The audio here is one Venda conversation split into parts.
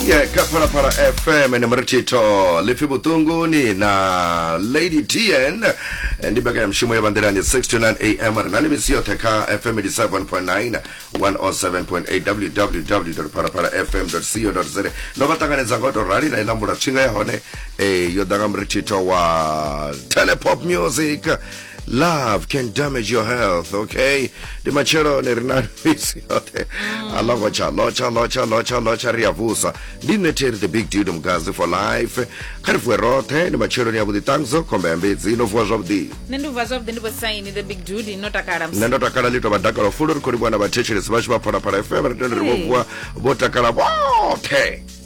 Yeah, ka Phalaphala FM ene murithitho lifi vhuṱunguni na lady tn Eh, ndi mbekanya mushumo ya vanḓilani 629 am ri na ni misi yoṱhe kha fm 87.9 107.8 www phalaphala fm co za ndo vha ṱanganedza nga u tou rali na ilambula tshinga ya hone eh, yo ḓa nga murithitho wa telepop music love can damage your health okay ndi matshelo ni ri na misi yoṱhe mm. a logotsha lotsha lotsha lotsha lotsha ri a vusa ndi nṋe theri the big dude mugazi for life kha ri vuwe roṱhe ndi matsheloni ya vhuḓi ṱangzo khomba ya mbedzi no vuwa zwavhuḓi nṋe ndi vuwa zwavhuḓi ndi vhosaini the big dude no takala nṋe ndo takala ḽi tou vha dakalo fulo ri khou livhuwa na vhathetshelesi vhashu vha phalaphala fm ri tende ri vho vuwa vho takala vhoṱhe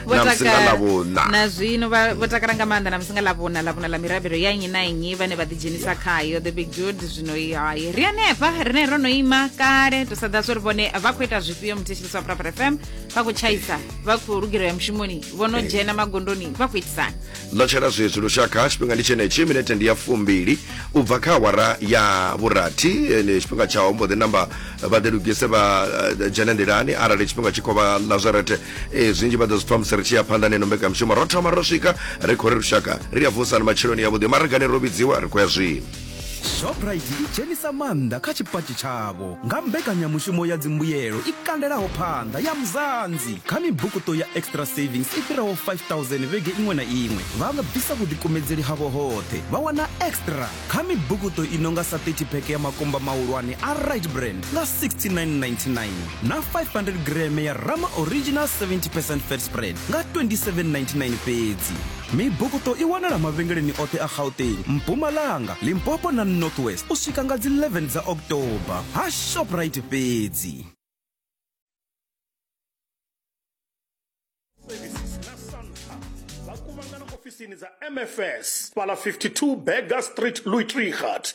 na musingalavhuna na zwino vho takala nga maanḓa na musingalavhuna lavhuna la mirabelo ya nnyi na nnyi vhane vha ḓidzhenisa khayo the big dude zwino hayi ri anefha rine ro no ima kale to sada zwo ri vhone vha khou ita zwifhio muthetshelisi wa prapra fm vha khou tshaisa vha khou lugireya mushumoni vho no dzhena magondoni vha khou itisana Ḽo tshela zwezwi lushaka tshifhinga ndi tshenetshi, minete ndi ya fumbili u bva kha awara ya vhurathi. Ndi tshifhinga tsha u mbo ḓi namba vha ḓi lugise vha eh, dzhene nḓilani arali tshifhinga tshi khou vha Nazarete. Eh, zwinzhi vha ḓo zwi pfa musi ri tshi ya phanḓa neno mbekanyamushumo. Ro thoma ro swika ri khou ri lushaka ri a vusa ni matsheloni yavhuḓi maragani ro vhidziwa ri khou ya zwino. shoprite i dzhenisa maanḓa kha tshipatshi tshavho nga mbekanyamushumo ya dzimbuyelo i kandelaho phanḓa ya muzanzi kha mibukuṱo ya extra savings i fhiraho 5000 vhege iṅwe na iṅwe vha nga bvisa vhuḓikumedzeli havho hoṱhe vha wana extra kha mibukuṱo i no nga sa 30 pheke ya makumba mahulwane a right brand nga 6999 na 500 greme ya rama original 70 percent fat spread nga 2799 fhedzi Mibukuṱo i wanala mavhengeleni oṱhe a Gauteng, Mpumalanga, Limpopo na North West u swika nga dzi 11 dza October ha Shoprite fhedzi. ofisini dza mfs fhala 52 burger street louis trichat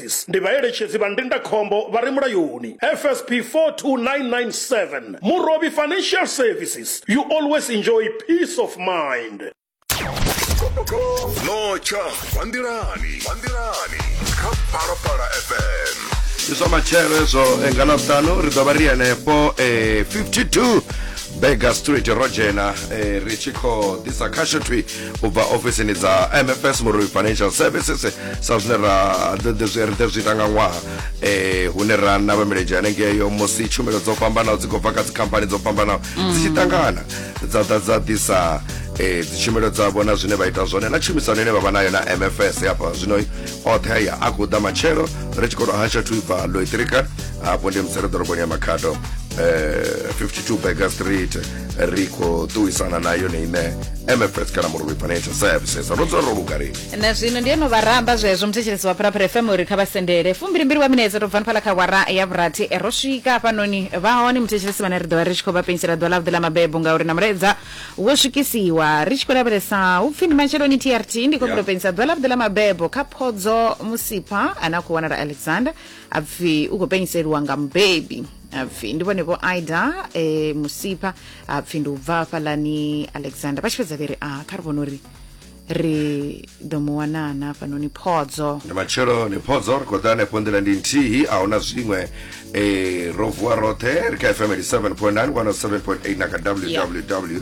Services ndi vhaeletshedzi vha ndindakhombo vha re mulayoni, FSP 42997. Murovhi Financial Services, you always enjoy peace of mind. Notsha bva nḓilani bva nḓilani kha Phalaphala FM. ndi zwa matshelo ezwo eh, nga ḽavhuṱanu ri ḓo vha ri henefho eh, 52 bega street ro dzhena eh, ri tshi khou ḓisa khasho thwi u bva ofisini dza mfs murui financial services sa zwine ra ḓo zwi ita nga ṅwaha um hune ra navha milenzhe hanengeyo musi tshumelo dzo fhambanaho dzi khou bva kha dzikhamphani dzo fhambanaho dzi tshi ṱangana dza ḓa dza ḓisa um dzitshumelo dzavho na zwine vha ita zwone na tshumisano ine vha vha nayo na mfs hafha zwino oṱhe aya a khou ḓa matshelo ri tshi khou to hasha thu ibva loitrika hafho ndi musere ḓoroboni ya makhado um 52 burger street ri khou ṱuwisana na yone ine mfs kana murovhi financial services ro dzula ro lugari na zwino ndi eno vharamba zwezwo muthetshelesi wa phalaphala fm uri kha vha sendele fumbilimbili wa minetse tou bvani phala kha wara ya vhurathi eh, ro swika hafhanoni vha hone muthetshelesi vhane ri ḓo vha ri tshi khou vha pensela ḓuvha ḽavhuḓi ḽa mabebo ngauri na mulaedza wo swikisiwa ri tshi khou lavhelesa hu pfi ndi matsheloni trt ndi khou Yeah. yeah. pensela ḓuvha ḽavhuḓi ḽa mabebo kha phodzo musipha ane a khou wanala alexander apfi ukupenyiselwa nga mubebi apfi ndi vhone vho aida e, musipha apfi ndi u bva hafhaḽani alexander vha tshi fhedza vhe ri a kha ri vhona uri ri ḓo mu wanana hafhanoni phodzo ndi matshelo ni phodzo ri khou ḓa hanefho nḓila ndi nthihi a huna zwiṅwe eh, ro vuwa roṱhe ri kha fm 87.9 107.8 na kha www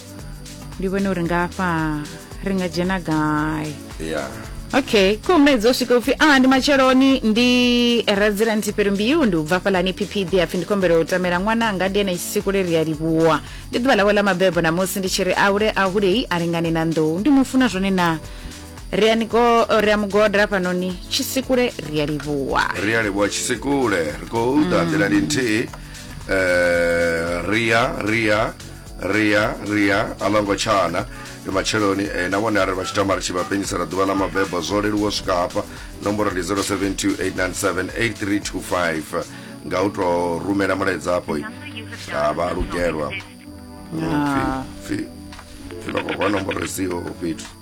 ndi vhone uri nga afha ri nga dzhena gai ya okay ko mnedzi o swika upfi a ndi matsheloni ndi resident perumbeu ndi u bva fhalani ppd apfi ndi kombela u tamela ṅwananga ndi ene tsiku leri a livhuwa ndi ḓuvha lawe ḽa mabebo namusi ndi tshi ri aule ahulei a lingane na nḓou ndi mu funa zwone na ri a ni go- ri a mu godela fhanoni tshisikule ri a livhuwa ri a livhuwa tshisekule ri khou ḓa nḓilani nthihi um ria ria ria ria a ḽa ngo tshana ndi matsheloni eh, na vhone arali vha tshi tama ri tshi vha penyisela ḓuvha ḽa mabebo zwo leluwa swika hafha nomboro ndi 0728978325 nga u tou rumela mulaedza afho a vha lugelwa pfi pfi pfi vha khou rwa nomboro isiho fhethu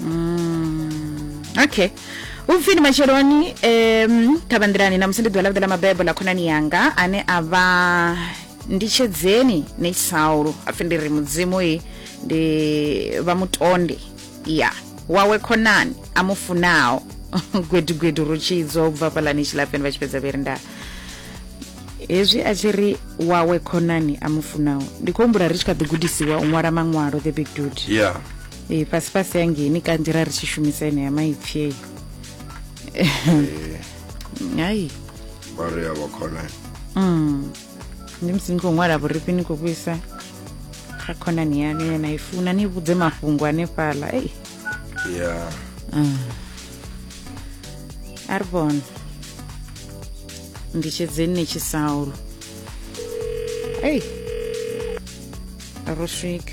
Mm, okay upfini matsheloni um thabanḓirani namusi ndi ḓuvha ḽavhuḓi ḽa mabebo ḽa khonani yanga ane a vha nditshedzeni ne saulu apfi ndi ri mudzimu i ndi vha mutonde ya wawe khonani a mu funaho gwedugwedu rutshidzo u bva fhalani tshilafheni vha tshi fhedza vheri nda hezwi a tshi ri wawe khonani a mu funaho ndi khou humbula ri tshi kha ḓi gudisiwa u ṅwala maṅwalo the big dude yeah e, fhasi fhasi ya ngeni kanzhi ra ri tshi shumisa ene ya maipfi eyi hayi vhari ya vhakhona mm. ndi musi ni khou ṅwala vhurifhi ni khou vhuisa kha khonani yanu ye na i funa ni vhudze mafhungo anefhaḽa ei ya mm. a ri vhona nditshedzeni ni tshi saulo ei ro swika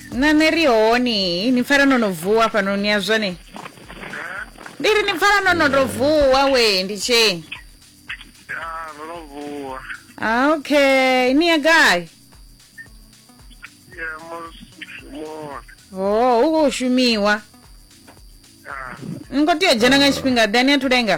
na ni ri honi ni pfala no no vuwa fhano ni ya zwone ndi ri ni pfala no no to vuwa we ndi tsheni ya ro no vuwa Ah, okay ni ya gai ya mushumoni oh hu khou shumiwa ya ni khou tea u dzhena nga tshifhinga ḓe ni a thu lenga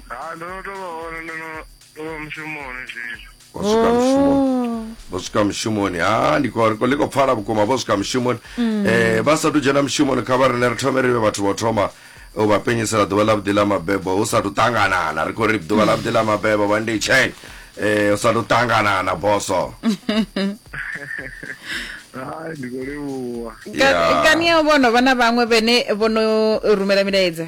ha ndo no to vha hone ndo no Ndo vha mushumoni zwino. Vho swika mushumoni. Vho swika mushumoni. Ha ndi khou ri khou pfala vhukuma vho swika mushumoni. Eh vha sa tu dzhena mushumoni kha vha rine ri thome ri vhe vhathu vho thoma u vha penyisela ḓuvha ḽa vhuḓi ḽa mabebo hu sa tu ṱanganana ri khou ri ḓuvha ḽa vhuḓi ḽa mabebo vha ndi tsheng eh hu sa tu ṱanganana boso. Hai ndi khou livhuwa. Yeah. kani ya vhono vha na vhaṅwe vhene vhono rumela milaedza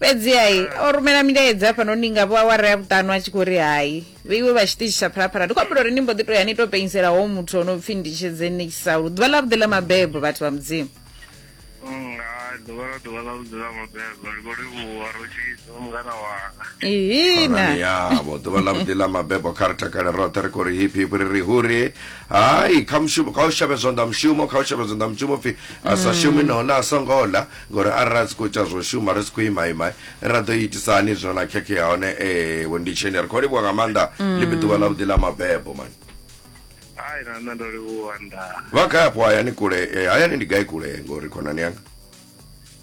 fhedziha ah. o rumela milaedza hafhanoni nga vhoawara ya vhuṱanu a tshi khou ri hai vheiwe vha tshiṱitshi tsha phalaphala ndi khou ambula uri ni mbo ḓi to ya ni to penyisela ho muthu o no pfhi ndi tshedzenekisa lu ḓuvha ḽa vhuḓi ḽa mabebo vhathu vha mudzimu nga ḓuvha ḽa ḓuvha ḽa vhuḓi ḽa mabebo ri khou livhuwa ro tshisa mungana wanga ihina yavo ḓuvha ḽa vhuḓi ḽa mabebo kha ri takale roṱhe ri khou ri hiphi hiphi ri ri huri hai kha mushumo kha u shavhe zwanḓa mushumo kha u shavhe zwanḓa mushumo pfhi a sa shumi nahone a songo ḽa Ngauri arali ra si khou tsha zwo shuma, ri si khou ima ima, ra ḓo itisa hani zwino na khekhe ya hone? Ee, vho Nditsheni, ri khou livhuwa nga maanḓa. Ḽi vhe ḓuvha ḽavhuḓi ḽa mabebo, man. Hai, na nṋe ndo livhuwa nda. Vha gai afho hayani kule? Eh, hayani ndi gai kule ngori khonani yanga?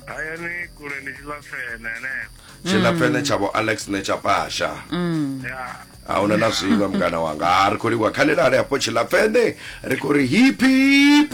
Hayani kule ndi Tshilafhene henefho. Tshilafhene tsha vho Alex ne tsha pasha. Ya. a huna na zwiṅwe mngana wanga ha ri khou livhuwa kha ḽilale hafho tshilafhene ri khou ri hip hip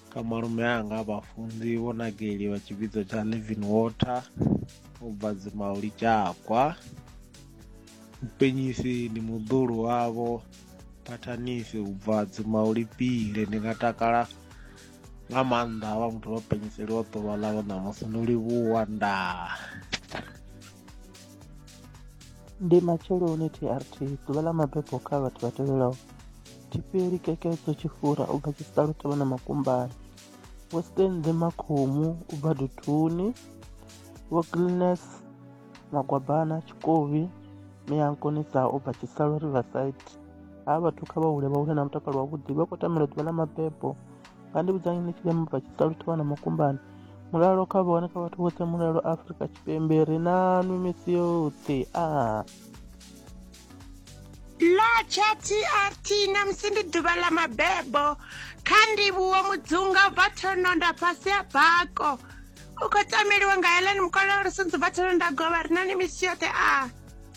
kha malume anga vhafunzi vho nageliwa tshivhidzo tsha living water u bva dzimauli tshakwa upenyisi ndi muḓulu wavho phathanisi u bva dzimauli pile ndi nga takala nga maanḓa havha muthu vha penyiseliwa ḓuvha ḽavho ṋamusi ndo livhuwa ndaa ndi matsheloni trt ḓuvha ḽa mabebo kha vhathu vha tevhelaho Chiperi kekedzo chifura ubva chisalo tavana makumbani western the makhomu ubva duthuni wokilines magwabana chikovi miyankonisa ubva chisalo riverside ha vhathu kha vha hule vha hule na mutakalo wavhuḓi vha khou tamela ḓuvha ḽa mabebo nga ndi vhudzani ni tshile mubva tshitsalu thavha na makumbani mulalo kha vhone kha vhathu vhoṱhe mulalo afrika tshipembe ri na nwi misi yoṱhe a ah. Lotsha TRT namusi ndi ḓuvha ḽa mabebo kha ndivhuwo mudzunga u bva thononda fhasi ya bako u khou tameliwa nga helani mukololo sunzi bva thononda govha ri na ni misi yoṱhe a ah.